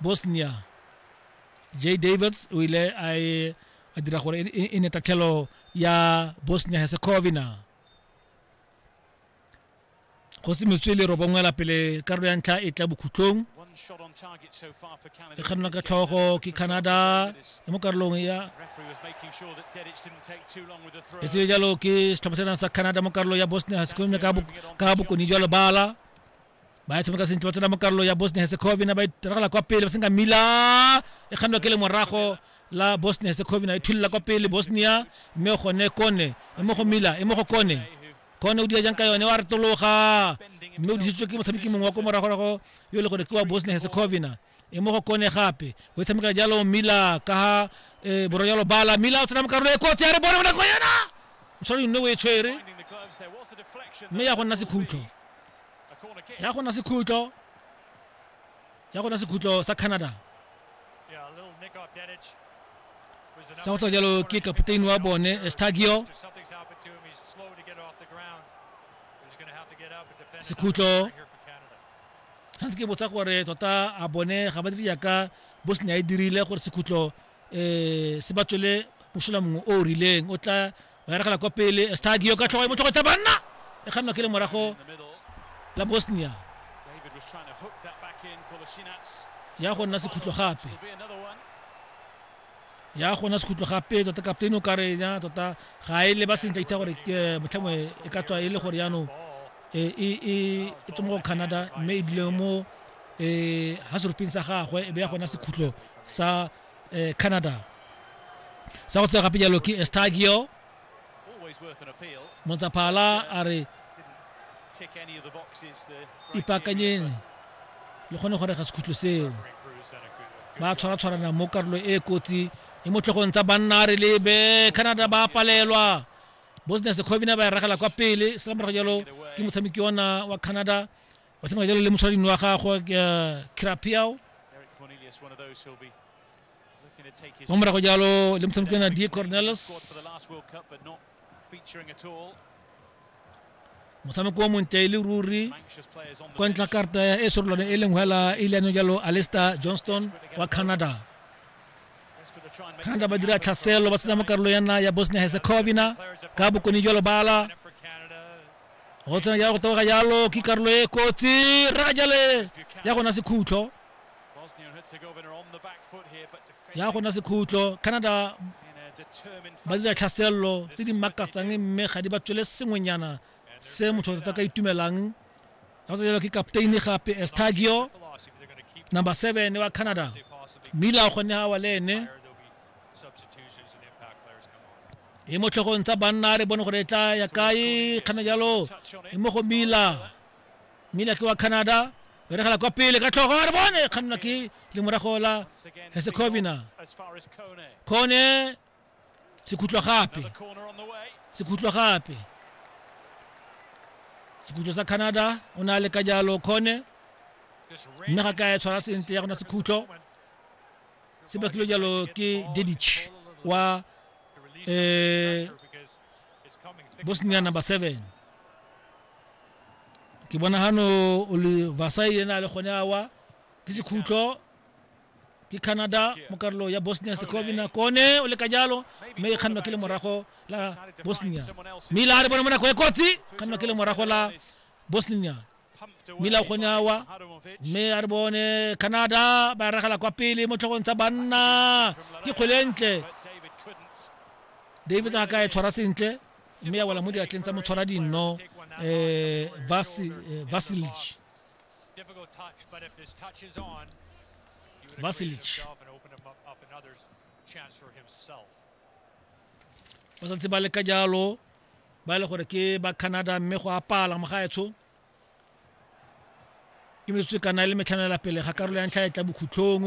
bosnia j davis o ile a e a dira gore e- e e ne tatlhelo ya bosnia herzegovina go se metswele robongwela pele karolo ya ntlha e tla bokhutlong One shot on target so far for Canada. e kganelwa ka tlhogo ke canada mo karolong ya Referee was making sure that Dedic didn't take too long with the throw. e tseye jalo ke setlhopha sena sa canada mo karolo ya bosnia herzegovina ka bok- ka bokoni jwa lebala ba e tshameka sentle ba tsena mo karolo ya bosnia herzegovina ba itiragala kwa pele ba senka mila e kgannwa ke le morago la bosnia herzegovina e thullela kwa pele bosnia mme o gone kone e mo go mila e mo go kone kone o dira jang ka yone wa retologa mme o disitswe ke motshameki mongwe wa ko moragorago yo e le gore ke wa bosnia herzegovina e mo go kone gape o e tshamekela jalo mila ka ga um borwa jalo bala mila o tsena mo karolo e kotsi ya re bone bonako yena o tshware nne o e tshwere mme ya go nna sekhutlo ya go nna sekhutlo ya go nna sekhutlo sa canada sa go tswa jalo ke kapteini wa bone stagio sekhutlo ga ntse ke botsa gore tota a bone ga ba dire jaaka bosnia e dirile gore sekhutlo um se ba tswele mosola mongwe o o rileng o tla ba eregela kwa pele estagio ka tlhogo e motlhogo tsa banna e kgannwa ke le morago la bosnia ya go nna sekhutlo gape ya gona sekhutlo gape tota kapteine o ka re ya tota ga e leba sentle itse gore ke motlhengwe e ka tswa e le gore yaanong e e e tswa mo canada mme e dile mo um ga seruping sa gagwe e be ya gona sekhutlo sa um canada sa go tsega gape jalo ke estagio motsaphala a re ipaakanyeng le kgone go rega sekhutlho seo ba tshwaratshwarana mo karolo e kotsi e mo tlhogong tsa banna a re lebe canada ba palelwa bosnia secovina ba e ragela kwa pele sela morago jalo ke motshameki ona wa canada wa tshameka jalo le moshwarading wa gagwe eh, crapiao mo morago jalo le motshameko ke na d cornelis motshameko wa montle e le ruri kwa ntlha karta ya e sorolwane e leng hela e ile yanong jalo alester johnston wa canada canada ba dira tlhaselo ba tsena mo karolo yana ya bosnia herzegovina ka bokone jalo bala go tsena jalo go taboga jalo ke karolo e kotsi ra jale ya gona sekhutlo ya gona sekhutlo canada ba dira tlhaselelo tse di makatsang mme ga di ba tswele sengwenyana se motho tota ka itumelang ga tsa jalo ke kapteini gape estagio number seven wa canada mila o kgonne gawa le ene e mo tlhogong tsa banna re bone gore e tla ya kae kgana jalo e mo go mila mmile ke wa canada beregela kwa pele ka tlhogo re bone kgannwa ke lemorago la hesecovina kone sekhutlwa gape sekhutlwa gape sekhutlwa sa canada o ne a leka jalo kone mme ga ka e tshwara sentle ya gona sekhutlo se bakilwe jalo ke dedich wa um bosnia number seven ke bona gano o le vasai ena a le gone awa ke sekhutlo ke canada mo karolo ya bosnia secovina kone o le ka jalo mme e kgannwa ke le morago la bosnia mme ile a re bone mo nako e kotsi kgannwa ke le morago la bosnia mme ile a gone awa mme a re bone canada ba e ragela kwa pele mo tlhogong tsa banna ke kgwele e ntle david a ka e tshwara sentle mme ya wela mo diatleng tsa motshwara dinno eh, eh Vasilic Vasilic ba santse ba leka jalo ba e le gore ke ba canada mme go apala mogaetsho ke metsotso e kana e le metlhanela pele ga karolo ya ntlha e tla bokhutlhong